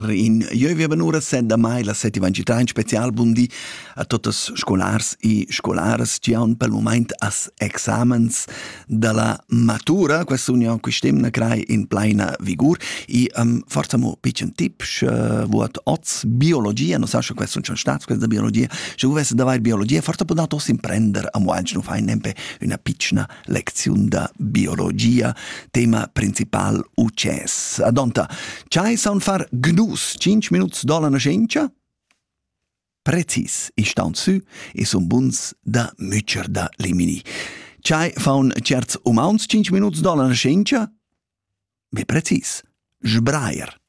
In jeu veva ora set da mai la settima gita in special bun di a totas scolars e scolaras che han pel moment as examens dalla matura questa union quest'emna crai in pleina vigur e um, forza mo piccen tip sche vuot oz biologia non sa sche questo non stat questa biologia sche vuvesse da vai biologia forza può dato imprender a mo anche non fai nempe una piccina lecziun da biologia, tema principal ucess. Adonta, chai saun far gnus 5 minuts dola nascenza? Precis, i staun sü e sun buns da mücher da limini. Chai faun certs umauns 5 minuts dola nascenza? Be precis, sbrair.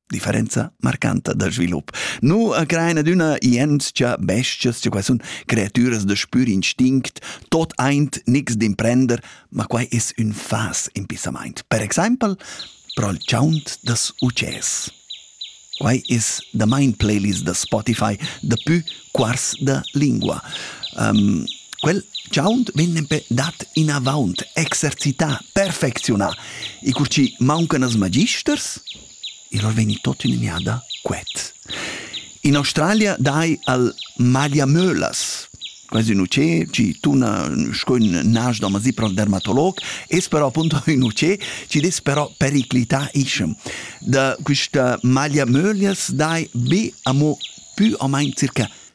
differenza marcanta da svilup. Nu acrain adüna ientscha bestias, che qua sun creatüras da spür instinct, tot aint niks d'imprender, ma quai es ün fas impissamaint. Per exaimpel pro'l chaunt das utschès. Quai es da main playlist da Spotify dapü quars da lingua. Um, quel chaunt vegn nempe dat inavaunt, exercità, perfecziunà. I cur chi mauncan as magisters, I va vegni tot ün gnada quet. In Australia dai al magliamölas. Quai es ün utschè chi tuna sco ün nas da masipra al dermatolog, es però appunto ün utschè chi dess però periclità ischem. Da quista magliamöglias dai be amo pü o main circa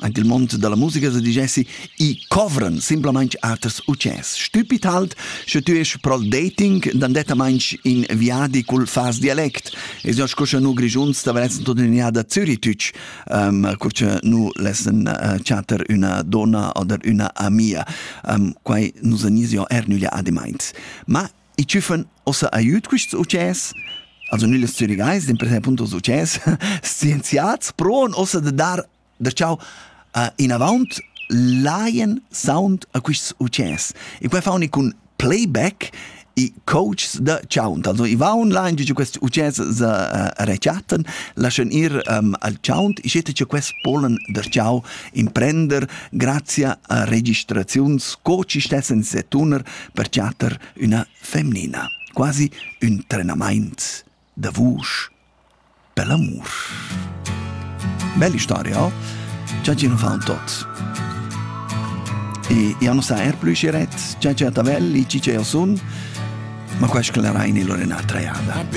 Anche il mond dalla musica sa digessi, i covran simplamain aters utschès. Stupid halt, sche tu es pro dating, dann detta in viadi cul fas dialect. Es jo sco sche nu Grigiuns t'avrezzen tutenia da Züritüch, um, co sche nu lessen uh, chatter üna donna oder üna amia. Um, quai nus anis jo er nüglia ademaint. Ma I tschüffan ossa aiüt quists utschès, also nügls zürigais, dimpersè appunto utschès scienziats, proan ossa da dar da chau a inavaunt lajan sound a quists utschès. E quai fauni cun playback i coaches da chaunt. Also i vaun lain giò quest utschès sa uh, rechattan, laschan ir um, al chaunt, i schetta cha quest polan der chau imprender grazia a registraziuns co chi stessan setuner per chatter üna femnina, quasi ün trenamaint da vusch per l'amur. Bella storia, oh? Già ci non fa un tot. E io non sa er più si ret, già c'è a tavelli, ci c'è io sun, ma quasi che la raini l'orena treada.